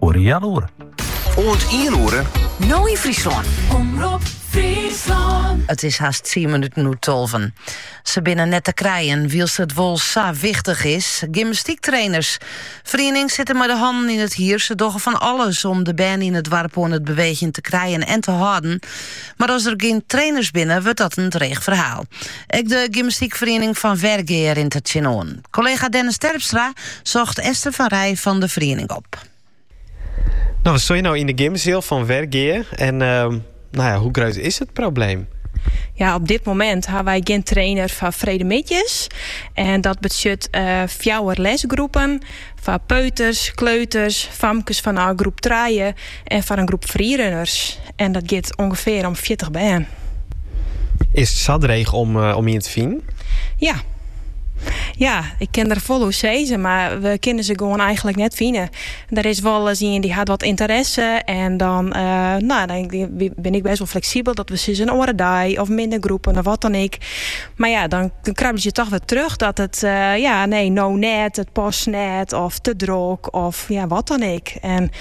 Oer een jaar oer. Oant ien oere. No yn Fryslân. Omrop Fryslân. It is hast 10 minuten oer tolven. Se binne net te krijen, wylst it wol sa wichtich is. Gymnastyktrainers. Ferienings sitte mei de hannen yn it hier. Se dogge fan alles om de bern yn it doarp oan it beweegjen te krijen en te hâlden. Mar as der gjin trainers binne, wurdt dat in dreech ferhaal. Ek de gymnastykferiening fan Wergea rint der tsjinoan. Kollega Dennis Terpstra socht Esther van Rij fan de feriening op. No, we steane no yn de gymseal fan Wergea. En ehm, no ja, hoe grut is it probleem? Ja, op dit momint ha wy gjin trainer foar freedtemiddeis. En dat betsjut uh, eh, fjouwer lesgroepen foar peuters, kleuters, famkes fan groep 3 En foar in groep freerunners, en dat giet ûngefear om fjirtich bern. Is it sa dreech om, eh, om ien te finen? Ja. Ja, ik kin der folle oer sizze, mar we kinne se gewoan eigentlik net fine. Der is wolris ien dy hat wat ynteresse en dan, eh, no, dan bin ik bêst wol fleksibel dat we sizze in oare dei of minder groepen of wat dan ek. Mar ja, dan krabbelje se toch wer terug dat it, eh, ja, nee, no net, it past net of te drok of ja, wat dan ek. En